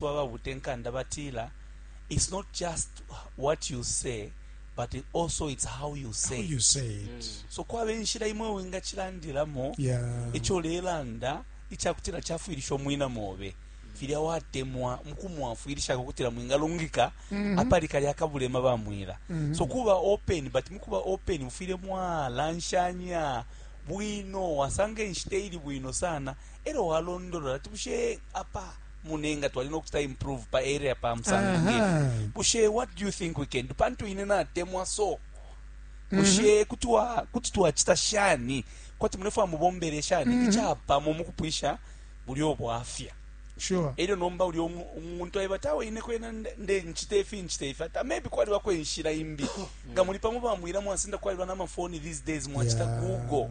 ba babute nkanda batila, It's not just what you say, but also it's how you say how you it. say it So kwaba inshila imwe wingacilandilamo yeah ico ulelanda icakutila cafwilisha umwina mobe filya watemwa mukumwafwilishako kutila mwingalungika apali kalya kabulema bamwila so kuba open but mukuba open mufwile mwalanshanya bwino wasanga inshita ili bwino sana elo walondolola ati bushe apa mune nga twali nokucita improve pa area pa msanga ngefi bushe what do you think we can do pantu ine natemwa so mhm. bushe kuti wa kuti twacita shani kwati munefwa mubombele shani mhm. icapamo mukupwisha buli obwafya sure elyo nomba uli umuntu ayeba tawe ine kwena nde nchite ifi nchite ifi ata maybe kwali wako inshira imbi nga muli pamo bamwira mwasinda kwali bana mafoni these days mwachita yeah. google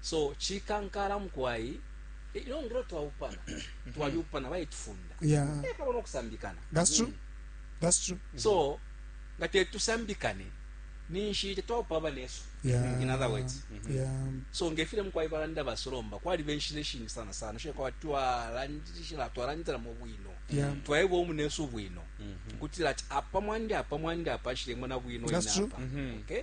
so chikankala mukwai eh, ino ngiro twaupana mm-hmm. twaliupana baitufunda yeah. eh, pabona okusambikana that's true that's true mm-hmm. so nga tetusambikane ninshi tetwaupa abanesu yeah. in other words mm -hmm. yeah. so ngefile mukwai balanda basolomba kwali benshi neshingi sana sana shile kwa twalandishila twalandila mu bwino yeah. twaeba omunesu bwino mm -hmm. kutila ati apa mwandi apa mwandi apa shile mona bwino ina apa mm -hmm. okay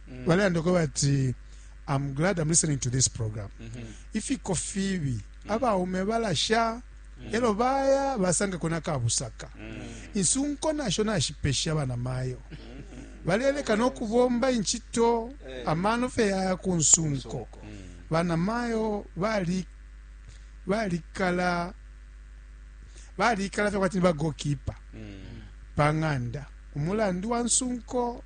mm. balelanda ko bati i'm glad i'm listening to this program mm -hmm. ifiko fibi mm. abaume balasha mm. elo baya basanga kona kabusaka mm. insunko nasho nashipesha bana mayo mm -hmm. baleleka no kubomba inchito eh. amano fe yaya ku nsunko mm. bana mayo bali balikala balikala fye kwati ni bagokipa mm. pa ng'anda umulandu wa nsunko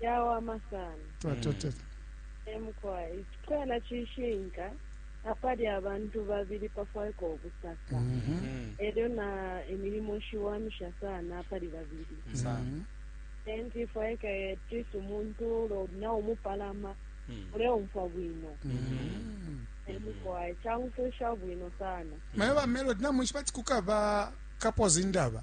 yawama sana twatotela emukwai icikwela cishinka apali abantu babili pafwaika ubusaka elyo na imilimo shiwamisha sana apali babili enti ifwaika etisi umuntu ulo na umupalama uleumfwa bwino emukwai caumfwisha bwino sana maye ba melody namwishiba ati kukaba kapoza indaba